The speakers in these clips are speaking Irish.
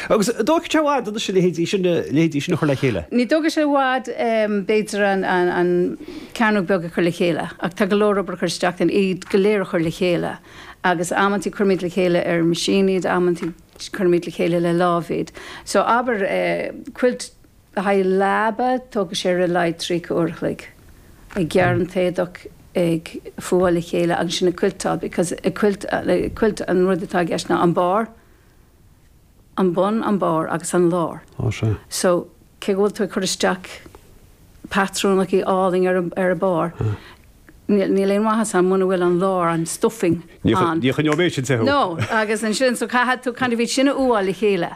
Agus dtógfadh sé i bhfad anois a leithéidí sin a chur le chéile? Ní thógfaidh sé i bhfad, b'fhéidir, an cearnóg beag a chur le chéile ach tá go leor obair a chur isteach ann, iad go léir a chur le chéile agus amanntaí cuirimid le chéile ar mheaisín iad, amanntaí cuirimid le chéile le lámh iad. So abair, quilt. Le haghaidh leaba, tógfaidh sé ar a laghad tríocha uair a chloig ag gearradh an t-éadach, ag fuáil le chéile agus ansin ag cuilteáil because ag cuilt, cuilt an rud atá i gceist ná an barr, an bun, an barr agus an lár. Ó, sea. So, cé go bhfuil tú ag cur isteach patrúnachaí áille ar an, ar an barr, níl, níl aon mhaitheas ann muna bhfuil an lár, an stuffing ann. Ní choinneoidh sé sin te thú. No, agus ansin so caithfidh tú kind of iad sin a fhuáil le chéile.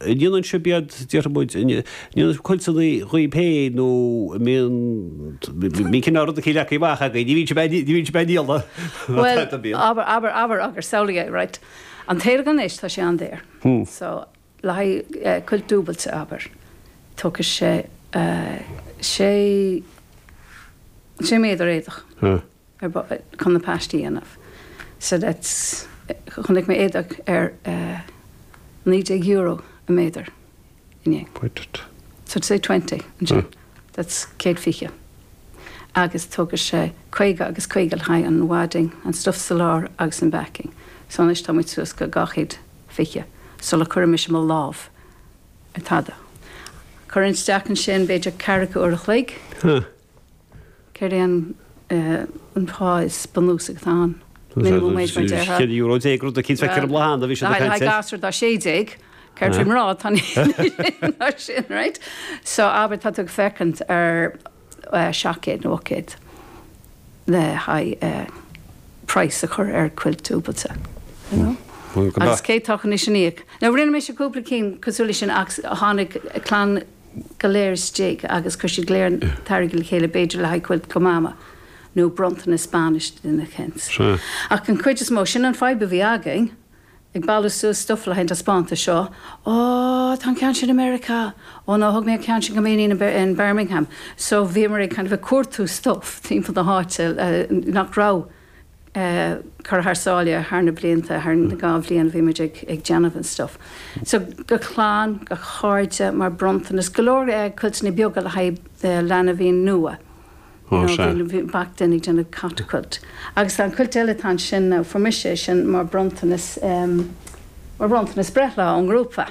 ndéanann sibh iad, déarfaimid, ndéanann cuid de dhaoibh féin nó mbíonn cineál rudaí le caitheamh amach agaibh, ní bhíonn sibh, ní bhíonn sibh ag díol na Bhuel, tithe, bíonn? abair, abair, abair agus samhlaigh é, right. An t-éadach anois, tá sé an-daor. So, le haghaidh cuilt dúbailte, abair, tógfaidh sé sé, sé méadar éadach. ar bith chun na paistí a dhéanamh so that's chonaic mé éadach ar €19 an méadar inné so say twenty anseo that's céad fiche agus tógfaidh sé caoga agus caoga le haghaidh an wadding an stuff sa lár agus an backing so anois tá muid suas go dhá chéad fiche sula gcuireann mise mo lámh ar tada. Cuireann isteach ansin b'fhéidir ceathracha uair a chloig. Céard é an an pá is bunúsaí, an minimum wage mar déarfá? Céad euro déag rud cinn feictear i mbláthanna a bhí siad ag caint air. Haghaidh gasúr atá sé déag, céard faoi mná atá ná sin right? So abair tá tú ag féachaint ar seacht gcéad nó ocht gcéad le haghaidh price a chur ar quilt dúbailte you know? Agus cé atá chun é sin a íoc? Now rinne mise cúpla cinn cosúil leis sin ach tháinig clann go léir isteach agus chuir siad go léir an t-airgead le chéile b'fhéidir le haghaidh cuilt go Mama nó bronntanas bainise do na Kents. Ach an chuid is mó, sin an fadhb a bhí againn, ag bailiú suas stuff le haghaidh an taispeántas seo, Ó, tá an ceann sin i Meiriceá! Ó no, thug mé an ceann sin go m'iníon in Birmingham. So bhíomar ag kind of ag cuartú stuff timpeall na háite nach raibh. curtha thar sáile thar na blianta, thar na dhá bhliain a bhí muid ag déanamh an stuff. So go clann, go cairde, mar bronntanas, go leor cuilteanna beaga le haghaidh leanbhaí nua. Ó sea. Bhí duine ag déanamh cat quilt. Agus tá an cuilt eile atá ansin now, fuair mise é sin mar bronntanas, mar bhronntanas breithlá ón ngrúpa.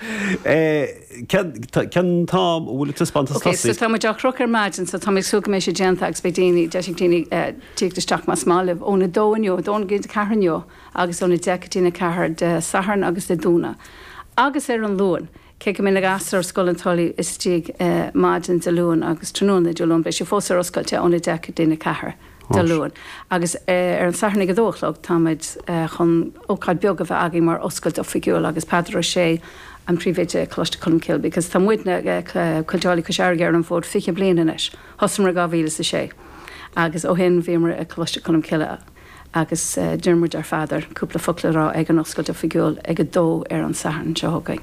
Cén t-am a bhfuil an taispeántas Ok, so tosaigh? tá muid á chrochadh ar maidin so tá mé ag súil go mbeidh sé déanta agus beidh daoine, deis ag daoine tíocht isteach más maith libh ón 2 inniu, 2 go dtí'n ceathair inniu agus ón 10 go dtí'n 4 Dé Sathairn agus Dé Domhnaigh. Agus ar an Luain, cé go mbeidh na gasúir Scoil na Tulaí istigh maidin Dé Luain agus tráthnóna Dé Luain, beidh sé fós ar oscailte ón 10 go dtí'n 4. Dé Luain. Agus ar an Satharn ag a dó a chlog, táimid chun ócáid beag a bheith againn mar oscailt oifigiúil agus Peadar Ó Sé, an príomhoide ag Coláiste Cholmcille, because tá muidne Cuilteálaithe Cois Fharraige ar an bhfód fiche bliain anois. Thosaíomar i dhá mhíle is a sé agus ó shin bhíomar i gColáiste Cholmcille agus d'iarramar ar Pheadar cúpla focal a rá ag an oscailt oifigiúil ag a dó ar an Satharn seo chugainn.